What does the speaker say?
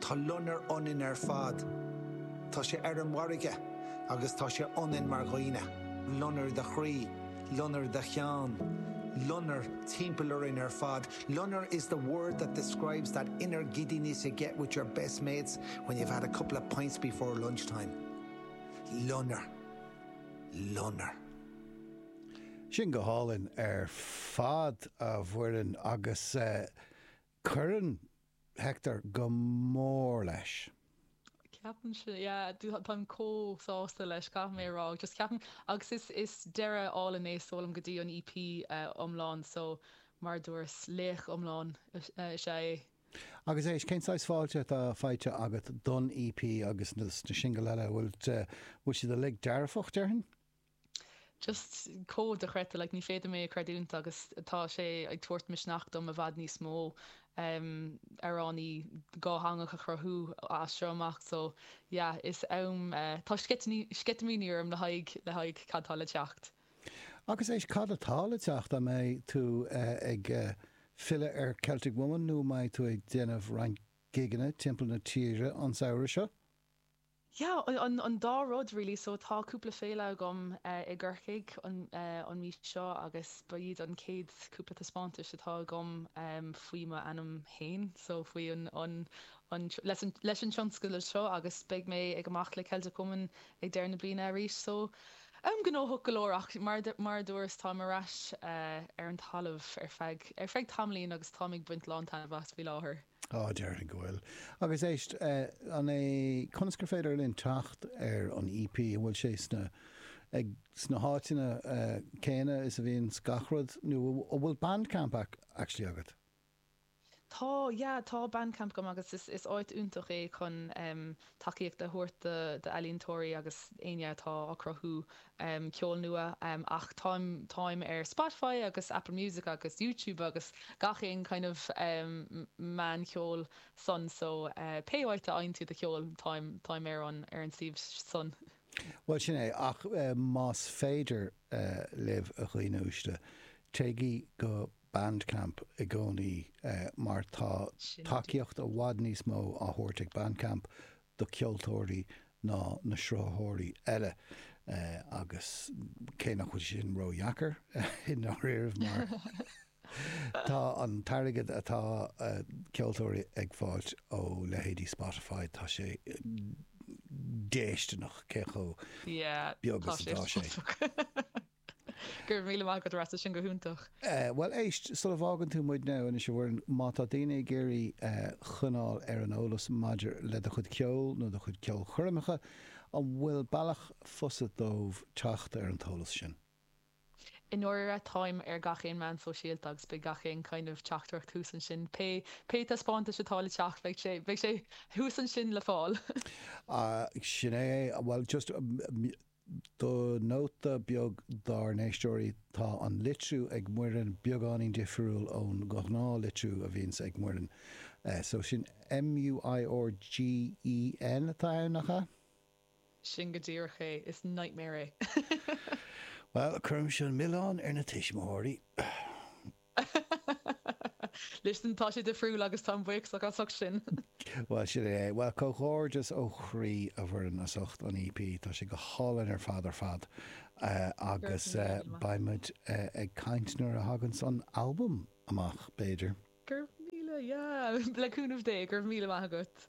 Tá loinnir ionainn ar fad. Tá sé ar an bhfarraige agus tá sé ionainn mar dhaoine, loinnir id chroí, loinnir id cheann, loinnir timpeall orainn ar fad. Loinnir is the word that describes that inner giddiness you get with your best mates when you've had a couple of pints before lunchtime. Loinnir. Loinnir. Sin go hálainn ar fad, a Mhuireann, agus eh. Cuireann Hector go mór leis. Ceapaim sin, yeah, táim comh sásta leis, caithfidh mé a rá, just ceapaim, agus is, is deireadh álainn é, seoladh isteach go dtí an EP iomlán, so mar a dúras, laoch iomlán is ea é. Agus éist, cén saghas fáilte atá faighte agat don EP agus na singil eile, bhfuil, bhfuil siad uilig dearfach, déarfainn? Just dochreidte, like ní féidir liom é a chreidiúint agus tá sé ag tabhairt misneach dom i bhfad níos mó amhránaí dátheangach a chruthú as seo amach so yeah is am tá sceitimíní orm le haghaidh le haghaidh cad tá le teacht. Agus éist cad atá le teacht, an mbeidh tú ag filleadh ar Celtic Woman nó an mbeidh tú ag déanamh roinnt gigeanna timpeall na tíre an samhradh seo? Yeah, an an dá rud really, so tá cúpla féile agam eh i gCorcaigh an eh an mhí seo agus ba iad an chéad cúpla taispeántais atá agam em faoi m'ainm fhéin so faoi an an an tr- leis an leis an tionscadal seo agus beidh mé ag amach le Celtic Woman ag deireadh na bliana arís so em gnóthach go leor ach mar a du- mar a dúras táim ar ais eh ar an talamh ar feadh ar feadh tamaillín agus táim ag baint lán taitneamh as faoi láthair. Á, déarfainn go bhfuil. Agus éist, an é, conas gur féidir linn teacht ar an EP? An bhfuil sé sna, ag, sna háiteanna céanna is a bhíonn gach rud nó an bhfuil Bandcamp actually agat? Tá, yeah, tá Bandcamp agam agus is, is áit iontach é chun, eh. tacaíocht a thabhairt d'ealaíontóirí agus éinne atá ag cruthú ceol nua ach táim táim ar Spotify agus Apple Music agus YouTube agus gach aon kind of meán ceoil san so pé áit a fhaigheann tú do cheol táim táim ar an ar an suíomh san. Bhuel sin é, ach más féidir libh a dhaoine uaisle, téigí go Bandcamp i gcónaí mar tá tacaíocht i bhfad níos mó á thabhairt ag Bandcamp do ceoltóirí ná na sruthaitheoirí eile agus cé nach bhfuil sé sin ró-dheacair i ndáiríre mar tá an t-airgead atá ceoltóirí ag fáilt ó leithéidí Spotify tá sé déisteanach cé chomh beag is atá sé. Go raibh míle maith agat a Rossa, sin go hiontach. Bhuel éist, sula bhfágann tú muidne anois a Mhuireann, má tá daoine ag iarraidh coinneáil ar an eolas maidir le do chuid ceoil nó do chuid ceolchoirmeacha, an bhfuil bealach fusa dóibh teacht ar an t-eolas sin? I ndáiríre, táim ar gach aon meán sóisialta agus beidh gach aon kind of teachtaireacht thuas ansin, pé, pé taispeántas atá le teacht, beidh sé, beidh sé thuas ansin le fáil. Sin é é, bhuel just. Do nóta beag dár n-éisteoirí, tá an litriú ag Muireann beagáinín difriúil ón ghnáth litriú a bhíonns ag Muireann. So sin M-u-i-r-g-h-e-n atá ann, nach ea? Sin go díreach é, is nightmare é. Bhuel, cuirimis an milleán ar na tuismitheoirí. Listen, tá sé difriúil agus táim buíoch as ucht sin. Bhuel, sin é é. Bhuel, comhghairdeas ó chroí, a Mhuireann, as ucht an EP. Tá sé go hálainn ar fad ar fad. Agus Gurbh míle maith. beidh muid ag caint nuair a thaganns an albam amach, b'fhéidir. Gurbh míle, yeah, le cúnamh Dé. Gurbh míle maith agat.